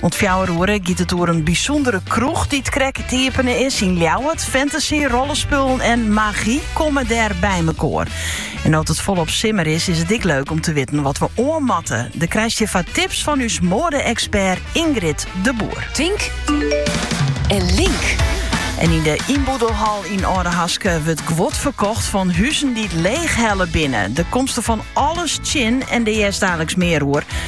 Oant fjouwer oere giet it oer in bysûndere kroech dy't krekt iepene is yn Ljouwert. Fantasy, rollespullen en magy komme dêr by mekoar. En no't it folop simmer is, is it ek leuk om te witten wat we oan moatte. Dêr krijst je foar tips fan ús moade-ekspert Ingrid de Boer. Tink en link. En yn de Ynboedelhal yn Aldehaske wurdt guod ferkocht fan huzen dy't leech helle binne. Dêr komst fan alles tsjin en dêr hearst daliks mear oer.